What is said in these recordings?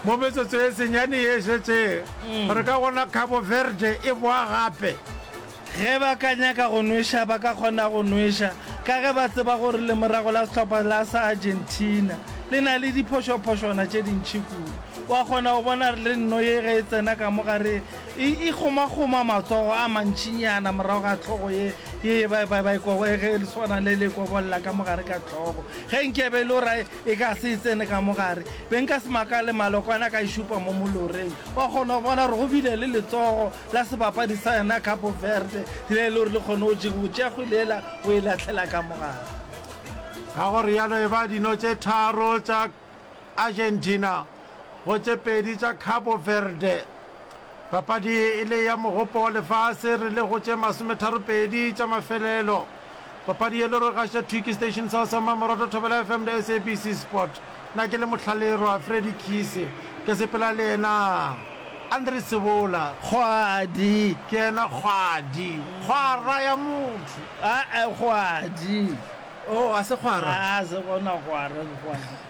Mo metsotso e senyane ye e šetšego, re ka bona Cabo Verde e boa gape. Ge ba ka nyaka go nweša, ba ka kgona go nweša ka ge ba tseba gore lemorago la sehlopha la sa Argentina le na le diphošophošwana tše dintši kudu. Wa kgona go bona re le nno ye ge e tsena ka mo gare e e kgomakgoma matsogo a mantšinyana morago ga hlogo ye ye e ba e ba e kobo ge e swana le le e kobolla ka mo gare ka hlogo ge nke e be e le E ka se e tsene ka mo gare. Be nka se makale Malokwane a ka e šupa mo moloreng. Wa kgona go bona gore go bile le letsogo la sebapadi sa yona Cabo Verde le e le gore le kgone go jega, go tšea kgwele yela go e lahlela ka mo gare. Ka go rialo e ba dino tše tharo tša Argentina. go tše pedi tša Cabo Verde. Papadi e le ya Mogopo wa Lefase re le go tše masometharopedi tša mafelelo. Papadi ye le rogaša Twiki Station Sa Sa Mmamoratwa Thobela FM le SABC Sport. Na ke le Mohlalirwa Freddy Kise. Ke sepela le yena Andre Sebola. Kgwadi. Ke yena Kgwadi. Kgwara ya motho. Aa kgwadi. Oh, a se kgwara. Aa se gona kgwara ke kgwadi.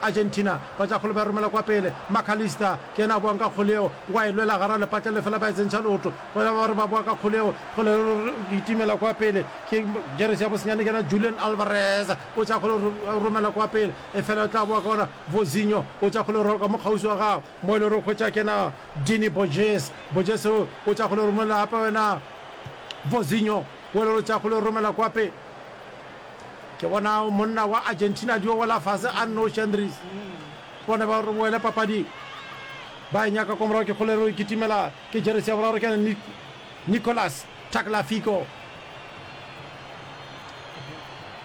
Argentina ba tla kgole ba e romela kwa pele. Mac Allister ke yena a boang ka kgole yeo, wa e lwela gara lepatla le fela ba e tsentšha leoto. Bona ba re ba boa ka kgole yeo, kgole e itimela kwa pele. Ke jeresi ya bosenyane ke yena Julian Alvarez o tša kgole e e romela kwa pele efela o tla boa ka gona Vozinho o tša kgole e rwala ka mo kgauswi wa gagwe mo e le gore o hwetša ke yena Dini Borges. Borges o o tša kgole e romela gape go yena Vozinho wo e le gore o tša kgole e romela kwa pele. Ke bona monna wa Argentina dio wela fase a nnoši Andries bone ba re boele papading ba e nyaka kwa morago ke kgolero e kitimela ke jeresi ya boraro ke Nicolas Tagliafico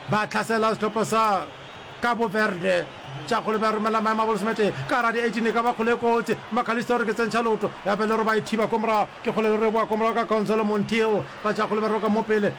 ba tlhasela sehlopha sa Cabo Verde tša kgole ba romela maemo a bolosemete ka gara di 18 e ka ba kgole e kotsi Macalista o re ke tsentšha loto ya pele re ba e thiba kwa morago ke kgolero re boa kwa morago ka Gonzalo Montiel ba tša kgole ba roka mo pele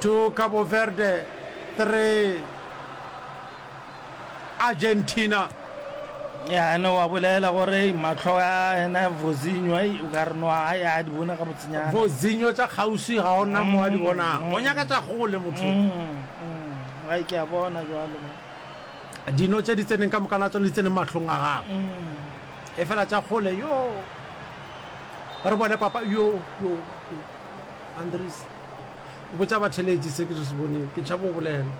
to Cabo Verde 3 Argentina. ya ne wa bolela gore mahlo a ena vozinyo ai o ka re no a ya di bone ga botsenyana vozinyo tša kgauswi ga ona mo a di mm, bonang mm. o nyaka tša gole motho mm, ai ke a bona jalo dino tše di tseneng ka moka la tsone di tseneng mahlong a gago Efela tša kgole yo ba re bone papa yo yo yo Andries o botša batheletši se ke se se bonego ke tšhaba go bolela.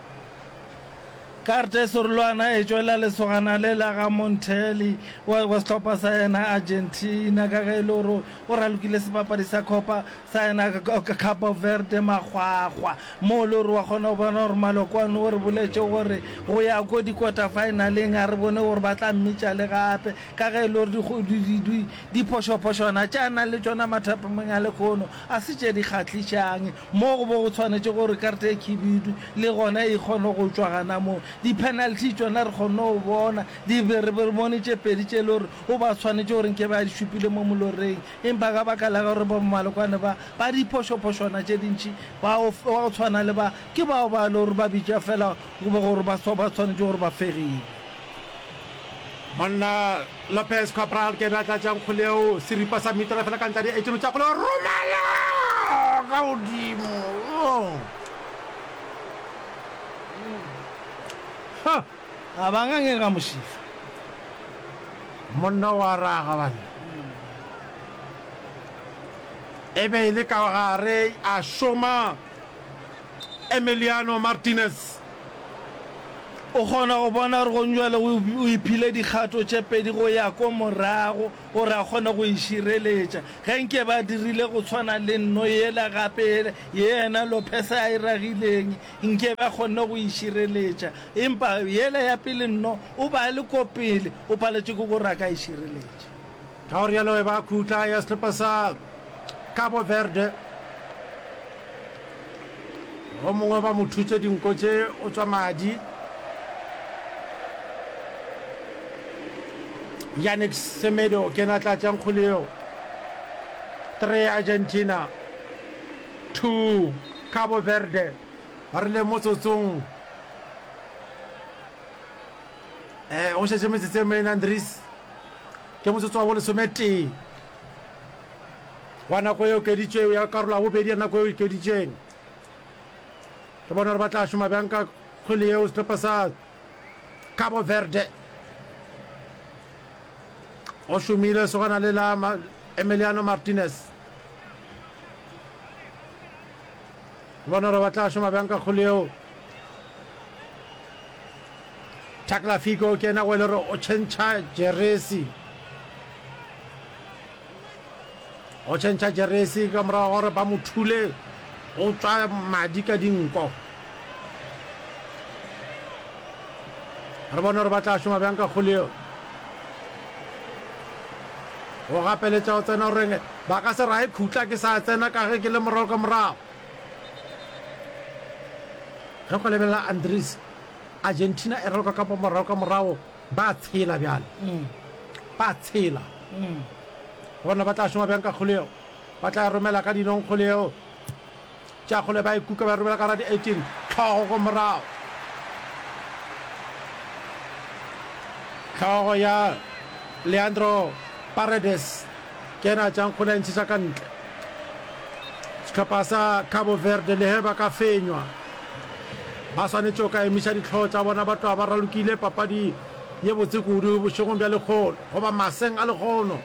Karte Sorloana e tšwela lesogana le la ga Monthelli wa wa sehlopha sa yena Argentina ka ge e le gore o ralokile sebapadi sa Copa Tsena ka Cabo Verde makgwakgwa, mo o le gore wa kgona go bona gore Malokwane o re boletše gore go ya ko dikota-finaleng a re bone gore ba tla mmitša le gape ka ge e le gore diphošophošwana tše a nang le tšona mathapameng a lekhono a se tše di kgahlišang mo go bo go tshwanetše gore karte e khibidu le gona e kgone go tšwa gana moo. Di-penalty tšona re kgonne go bona, re bone tše pedi tše e le gore o ba tshwanetše gore nke ba di šupile mo moloreng. Empa ka baka la gore bommalokwane ba, ba diphošophošwana tše dintši, ba go, ba go tshwana le ba, ke bao ba e le gore ba bitšwa feela goba gore ba swa, ba swanetše gore ba fegiwe. Monna Lopez Cabral ke ena a tlatšang kgole yeo, seripa sa mitara feela ka ntle a di etšološa kgole, go romela ka godimo. Oh! Huh! A ba ngangega mošifa. Monna o a ra gabane e be e le ka gare a šoma Emiliano Martinez. O kgona go bona gore gong jwale o iphile dikgato tše pedi go ya ko morago gore a kgone go e šireletša. Ge nke ba dirile go tshwana le nno yela gape ye yena Lopez a e ragileng Nke ba kgonne go e šireletša. Empa yela ya pele nno, o ba a le ko pele, o paletšwe ke gore a ka e šireletša. Ka go rialo e ba khutla ya sehlopa sa Cabo Verde. Go mongwe ba mo thutse dinko tše o tswa madi. Yannick Semedo ke na tlatša nkgoleo. 3 Argentina. Two, Cabo Verde ba rile motsotsong e go šetše metsotso e mene. Andries ke motsotso wa bolesometee wa nako e okeditšwego ya karolo ya bobedi ya nako e okeditšweng. Ke bona gore ba tla šoma bjang ka kgwele yeo sehlopha sa Cabo Verde. Go šomile segwana le la Emiliano Martinez. bona gore ba tla šoma bjang ka kgolo yeo takla figo ke ena go e le gore o tšhentšha jeresi o tšhentšha jeresi ka morago gore ba mo thule o tswa madi ka dinko re bone gore ba tla šoma bjang ka kgolo yeo Go gapeletša go tsena go reng? Ba ka se raye khutla ke sa tsena ka ge ke le morago ka morago. Ge go lebelela Andries, Argentina e raloka ka morago ka morago, ba a tshela bjale. Ba a tshela. Gona ba tla šoma bjang ka kgole yeo? Ba tla e romela ka dinong kgole yeo? Tša kgole ba e kuka ba robela ka ra di 18 tlhogo go morago. Tlhogo ya Leandro Paredes ke ena a tšang kgole a ntšhetša ka ntle. Sehlopha sa Cabo Verde lehe ba ka fenywa ba swanetše go ka emiša ditlhogo tša bona ba tloga ba ralokile papadi ye botse kudu bošegong bja lekgono goba maseng a lekgono.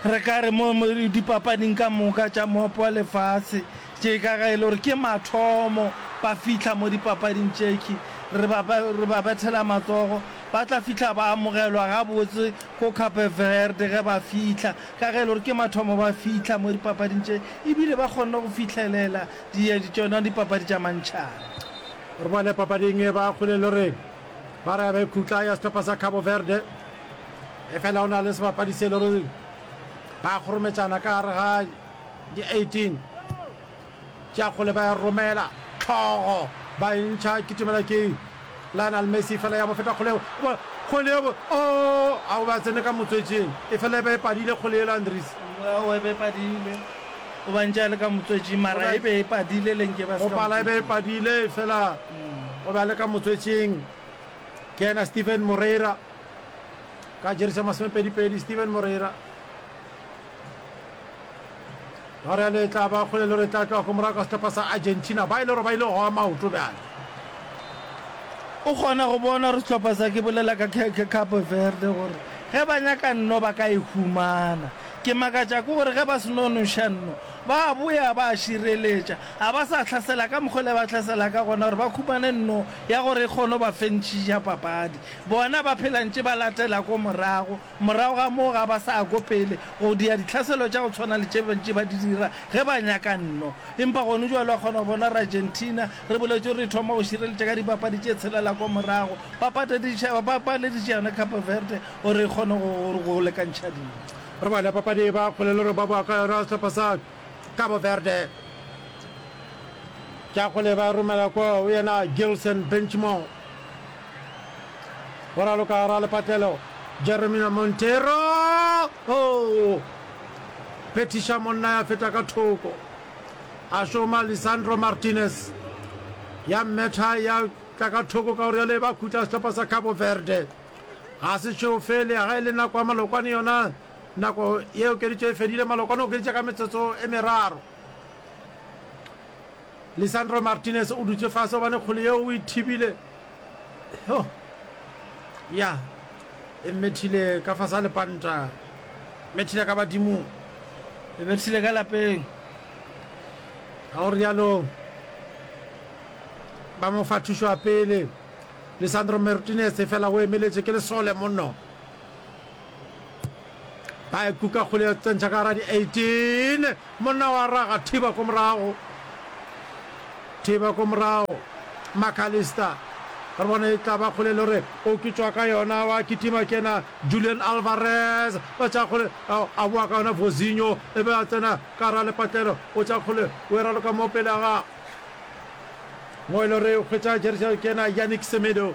Re ka re mo dipapading ka moka tša Moepo wa Lefase tše ka ge e le gore ke mathomo ba fihla mo dipapading tše ke re ba re ba bethela matsogo ba tla fihla ba amogelwa gabotse ko Cape Verde ge ba fihla ka ge e le gore ke mathomo ba fihla mo dipapading tše e bile ba kgonne go fihlelela di tšona dipapadi tša mantšhana. Re bone papading e ba kgole le gore ba re ba ikhutla ya sehlopha sa Cabo Verde Efela o na le sebapadi se e le gore ba kgorometšana ka gare ga di 18 tša kgole ba ya romela tlhogo ba e ntšha kitimela ke Lionel Messi fela ya bo feta kgole yeo kgole yeo o a o ba tsene ka motswetšing e fela e be e padile kgole yela Andries o be padile o ba ntša le ka motswetšing mara e be e padile le nke ba se pala e be e padile fela o ba le ka motswetšing ke ena Steven Moreira ka jersey ya masomepedipedi steven moreira ba re le tla ba kgole le re tla tloa ko morago ka setlhopha sa argentina ba e le gore ba ile go goa maoto bjale o kgona go bona gore setlhopha sa ke bolela ka cape verde gore ge ba nyaka nno ba ka e humana ke makatša ke gore ge ba senonoša nno ba boya ba šireletša ga ba sa tlhasela ka mokgwele ba tlhasela ka gona gore ba khumane nno ya gore e kgone ba fentšhiša papadi Bona ba phela ntše ba latela ko morago, morago ga moo ga ba sa ya ko pele, go dia ditlhaselo tša go tshwana le tše ba ntše ba di dira ge ba nyaka nno. Empa gone bjale wa kgona go bona gore Argentina, re boletše gore e thoma go šireletša ka dipapadi tše tshelela ko morago, ba patadiša, ba paleditše yona Cape Verde gore e kgone go, go, go lekantšha dilo. Re bone papadi e ba kgole le gore ba boa ka yona sehlopha sa Cape Verde. Ke a kgole ba romela ko go yena Gilson Benchmore, Go raloka go ra lepatlelo Jeremina Montero o phethiša monna ya feta ka thoko. A šoma Lisandro Martinez ya mmetha ya tla ka thoko ka gore ya le ba khutla sehlopha sa Cabo Verde. Ga se šeo fele ga e le nako ya malokwane yona nako ye okeditše e fedile malokwane okeditše ka metsotso e meraro. Lisandro Martinez o dutše fase gobane kgole yeo o e thibile. Hyo! Ya, e mmethile ka fase ga lepanta. Mmethile ka badimong. E mmethile ka lapeng. Ga go rialo. Ba mo fa thušo ya pele. Lisandro Martinez efela o emeletše ke lesole mono. ba e kuka kgole ya tsentšha ka gara di-eighteen monna wa raga thiba ko morago thiba ko morago macalister re bona e tla ba kgole le gore o ke tswa ka yona wa kitima kena julian alvarez ba tša kgole a boa ka yona vozinho e be a tsena ka gara lepatlelo o tša kgole o e raloka mo pele ga gago mo e le gore o kgwetsa jersa kena yanic semedo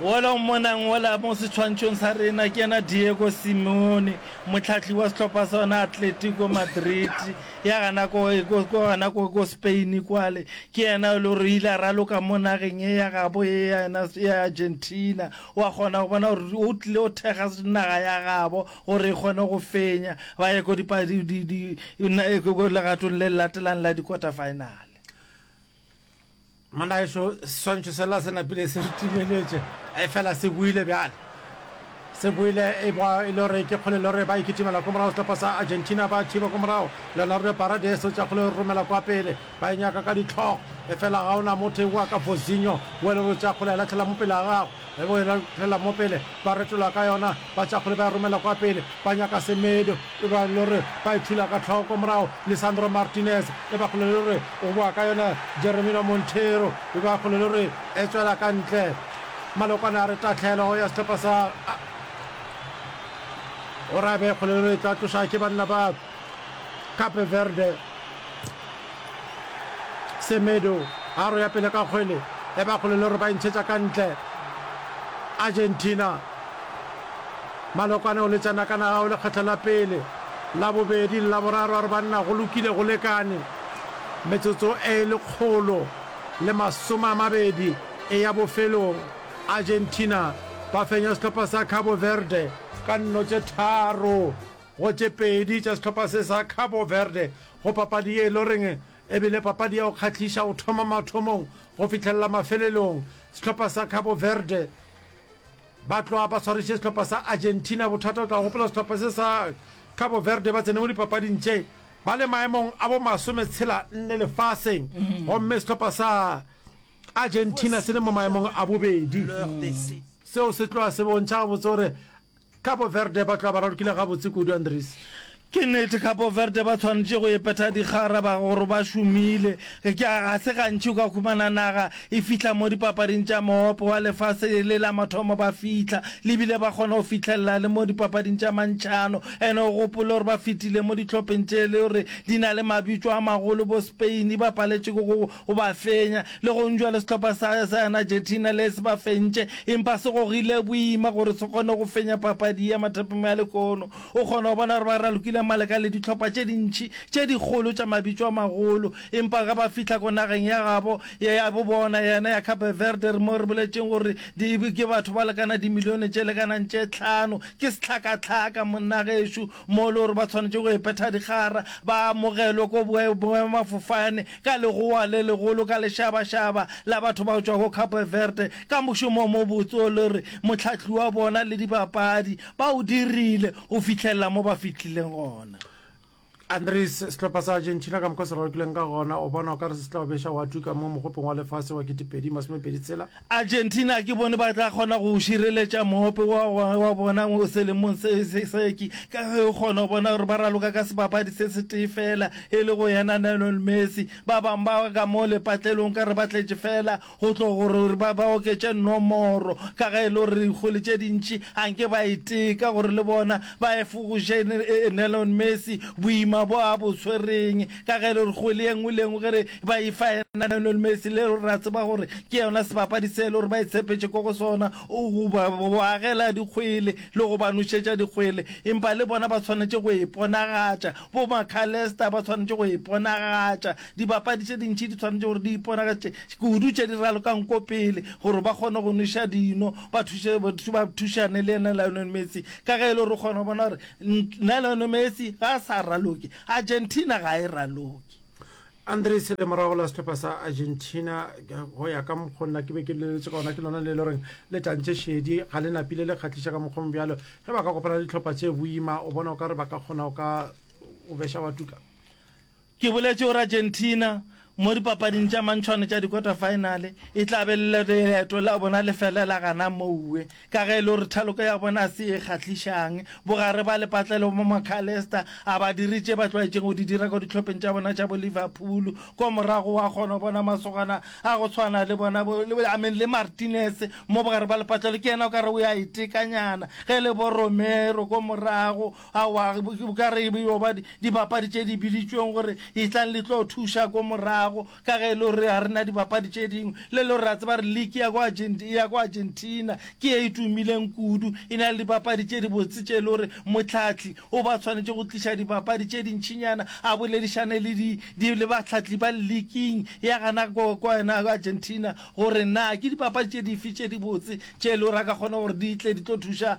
Wola o mmonang wola mo setshwantšhong sa rena ke yena Diego Simeone, mohlahli wa sehlopha sa yona Atletico Madrid ya gana ko gana ko ko Spain kwale. Ke yena o le gore o ile a raloka mo nageng e ya gabo e ya yena ya Argentina. Wa kgona go bona gore o tlile o thekga naga ya gabo gore e kgone go fenya ba ye ko legatong le latelang la dikota-finale. Molaeso swantšho sela se napile se re timeletše, efela se boile bjale. Se boile e ba e le gore ke kgole le gore ba ikitimela ko morago sehlopha sa Argentina ba thiba ko morago. Leonardo Paredes o tša kgole e romela kwa pele, ba e nyaka ka dihlogo, efela ga ona motho ewa ka Vozinho wo e le gore o tša kgole e lahlela mo pele ga gagwe. Ge go ela phela mo pele, ba retola ka yona, batšakgole ba e romela kwa pele, ba nyaka Semedo, e ba e le gore ba e thula ka hloko. Morago Lisandro Martinez, e ba kgole e le gore o boa ka yona, Jeremina Monteiro, e ba kgole e le gore e tšwela ka ntle. Malokwane a re tahlelo ya sehlopha sa Oraibe e kgole e le gore e tla tloša ke banna ba Cape Verde. Semedo a roya pele ka kgwele e ba kgole le gore ba intšhetša ka ntle. Argentina. Malokwane o letša naka na gago lekgetlo la pele, la bobedi le la boraro a re banna go lokile go lekane. Metsotso e lekgolo le masome a mabedi e ya bofelong. Argentina ba fenya sehlopha sa Cabo Verde ka nno tše tharo. Go tše pedi tša sehlopha se sa Cabo Verde go papadi ye e le goreng e bile papadi ya go kgahliša go thoma mathomong go fihlelela mafelelong. Sehlopha sa Cabo Verde ba tloga ba swariše sehlopha sa Argentina. Bothata o tla gopola sehlopha se sa Cabo Verde ba tsene mo dipapading tše ba le maemong a bo masome tshela nne lefaseng gomme sehlopha sa Argentina se le mo maemong a bobedi. Seo se tloga se bontšha gabotse gore Cabo Verde ba tloga ba ralokile gabotse kudu, Andries. Ke nnete, Cabo Verde ba tshwanetše go ipetha dikgara ba gore ba šomile. Ga se gantši o ka humana naga e fihla mo dipapading tša Moopo wa Lefase e le la mathomo ba fihla, le bile ba kgona go fihlelela le mo dipapading tša mantšhano. And-e o gopole gore ba fetile mo dihlopheng tše e le gore di na le mabitšo a magolo bo Spain, ba paletše ke go O ba fenya. Le gonjwale sehlopha sa sa yona Argentina le se ba fentše, empa se gogile boima gore se kgone go fenya papadi ye mathaping a lekono. O kgona go bona gore ba ralokile maleka le dihlopha tše dintši tše dikgolo tša mabitšo a magolo, empa ge ba fihla ko nageng ya gabo, ya yabo bona, yena ya Cape Verde, re mo re boletšeng gore di, ke batho ba lekana dimilione tše lekanang tše tlhano, ke sehlakahlaka, monna gešo, mo le gore ba swanetše go epetha dikgara, ba amogelwe ko boemafofane, ka legowa le legolo ka lešabašaba la batho bao tšwago Cape Verde ka mošomo o mobotse o le re mohlahli wa bona le dibapadi ba o dirile go fihlelela mo ba fihlileng gona. Andres, Sehlopha sa Argentina ka mokgwa o se rarokileng ka gona, o bona o ka re se tla o beša wa tuka mo mogopong wa lefase wa 2026? Argentina ke bone ba tla kgona go šireletša moope wa gagwe wa bona selemong se seki ka ge o kgona go bona gore ba raloka ka sebapadi se setee fela e le go yena Lionel Messi. Ba bang ba ka mo lepatlelong ka re ba tletše fela go tlo gore ba ba oketše nomoro ka ge e le gore dikgole tše dintši a nke ba e teka gore le bona ba efogoše Lionel Messi boima bo a bo tshwereng ka ge e le gore kgwele ye nngwe le ye nngwe ge re ba e fa yena Lionel Messi le gore re a tseba gore ke yona sebapadi se e le gore ba e tshepetše ko go sona go ba agela dikgwele le go ba nošetša dikgwele empa le bona ba tshwanetše go e ponagatša bo Macalester ba tshwanetše go e ponagatša dibapadi tše dintši di tshwanetše gore di iponagatše kudu tše di ralokang ko pele gore ba kgone go noša dino ba thuše ba thušane le yena Lionel Messi ka ge e le gore o kgona go bona gore nna Lionel Messi ga a sa raloke Argentina ga e raloke. Andrey Sele, morago la sehlopha sa Argentina, go ya ka mokgwa nna ke be ke leletše ka gona, ke lona le le goreng le tantše šedi, ga le napile le kgahliša ka mokgwa mobjalo. Ge ba ka kopana le dihlopha tše boima, o bona o ka re ba ka kgona go ka o beša wa tuka? Ke boletše gore Argentina Mo dipapading tša mantšhwane tša dikota-faenale, e tla be le leeto la bona le felela gana moue. Ka ge e le gore thaloko ya bona ga se ye e kgahlišang, bogare ba lepatlelo bja Mac Allister a ba dire tše ba tlwaetšego go di dira ka dihlopheng tša bona tša bo Liverpool, kwa morago wa kgona go bona masogana a go tshwana le bona bo I mean le Martinez mo bogare bja lepatlelo ke yena o ka re o a e tekanyana, ge e le bo Romero kwa morago Aowa, o ka re e yo ba dibapadi tše di biditšweng gore e tlang le tlo thuša ko morago, ka ge e le gore ga re na dibapadi tše dingwe. Le e le gore ra tseba gore league ya ko ya ko Argentina ke ye e tumileng kudu, e na le dibapadi tše dibotse tše e le gore mohlahli o ba tshwanetše go tliša dibapadi tše dintšinyana a boledišane le di, di, le bahlahli ba leaking ya gana ko, ko yena Argentina gore na ke dibapadi tše dife tše dibotse tše e le gore a ka kgona gore di tle di tlo thuša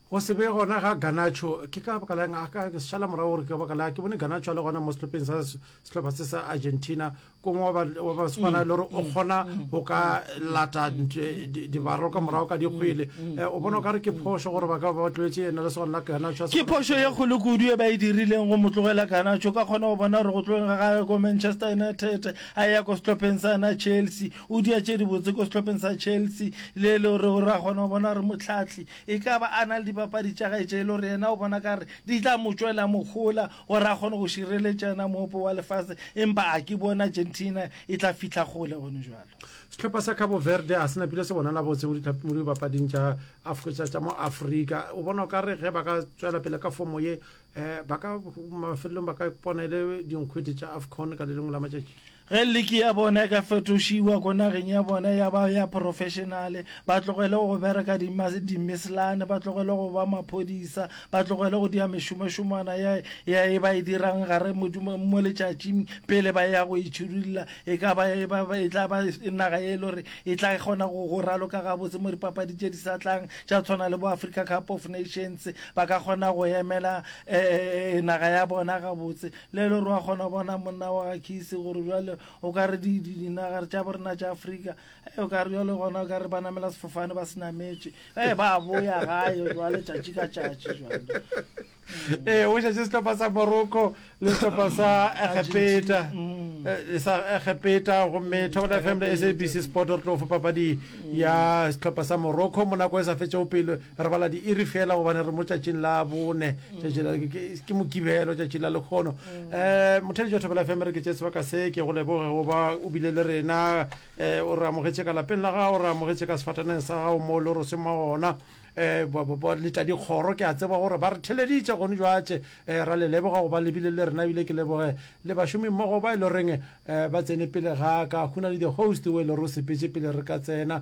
Go se be gona ga Garnacho ke ka baka la'ng? A ka šala morago gore ke ka baka la ke bone Garnacho a le gona mo sehlopeng sa sehlopha se sa Argentina kong wa ba swana le gore o kgona go ka lata dibaro ka morago ka dikgwele. O bona o ka re ke phošo gore ba ka ba tloetse ena le swana la Garnacho. Ke phošo ye kgolo kudu e ba e dirileng go mo tlogela Garnacho. O ka kgona go bona gore go tlogeng ga gagwe ko Manchester United a eya ko sehlopeng sa na Chelsea, o dia tše dibotse ko sehlopeng sa Chelsea le e le gore o ra kgona go bona gore mohlahli E ka ba a na le dipapadi tša gae tše e le gore yena o bona ka re di tla mo tšwela mohola gore a kgone go šireletša yena moopo wa lefase empa a ke bone Argentina e tla fihla kgole gone bjalo. Sehlopha sa Cabo Verde a se napile se bonala botse mo dipapading tša Afcotša tša mo Afrika. O bona o ka re ge ba ka tswela pele ka fomo ye eh, ba ka mafelelong ba ka ipona e le dinkgwete tša Afcon ka le lengwe la matšatši. Ge liki ya bona e ka fetošiwa ko nageng ya bona ya ba ya professionale, ba tlogele go bereka di ma, di mislane, ba tlogele go ba maphodisa, ba tlogele go dia mešomošomwana ya, ya e ba e dirang gare mo, mo letšatšing pele ba ya go itšhidulla, e ka ba, e ba, e tla ba naga ye e le gore e tla kgona go, go raloka gabotse mo dipapadi tše di sa tlang tša tshwana le bo Africa Cup of Nations, ba ka kgona go emela, eh, naga ya bona gabotse. Le le gore wa kgona bona monna wa ga Kisi gore bjale o ka re dinaga tša borena tša Afrika o ka re bjale gona o ka re ba namela sefofane ba se nametše e ba boya gae jwale tšatši ka tšatši jwale ee o šetše sehlopha sa morocco le sehlopha sa egepeta mm. sa egepeta gomme thobela fm le sabc sport re tlo fa papadi ya sehlopha sa morocco mo nako e sa fetšego pele Re bala diiri fela gobane re mo tšatšing la bone, tšatši la- ke- ke- ke Mokibelo, tšatši la lekgono. Um motheletši wa Thobela FM re ke tše sebaka se, ke go leboge go ba o bile le rena. Um o re amogetše ka lapeng la gago, o re amogetše ka sefataneng sa gago moo le roseng mwa gona. Um ba- ba- ba leta dikgoro ke a tseba gore ba re theleditše gone jwatše. Um ra le leboga go ba le bile le rena ebile ke leboge le bašomimmogo ba e le goreng um ba tsene pele ga ka. Go na le di-host o e le gore o sepetše pele re ka tsena.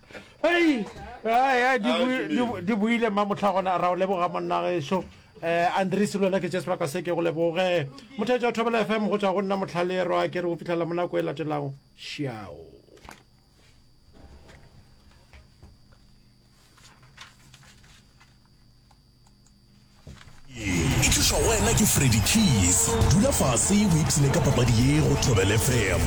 di buile mma motlha gona ra o leboga monnageso um eh, andres le wena ke jesper ka se ke go leboge mothetša o thobela fm go tswa go nna motlhalerwa ke re go fitlhela mo nako e latelago šiao e tlišwa go wena ke freddy keys dula fase o ipsene ka papadi ye go tobel fm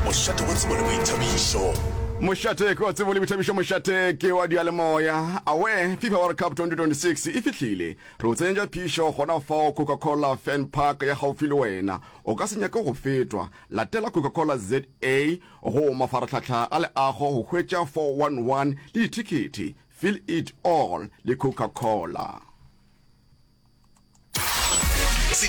mošate wa tsebo le boithabišo mošate ke wa tsebo le boithabišo mošate ke wa dialemoya awe fifa world cup 2026 e fihlile re o tsenyetša phišo gona fao coca-cola fan park ya gaufi le wena o ka se nyake go fetwa latela coca-cola za go mafaratlhatlha a leago go hwetša 411 le dithekhethi Feel It All le Coca-Cola.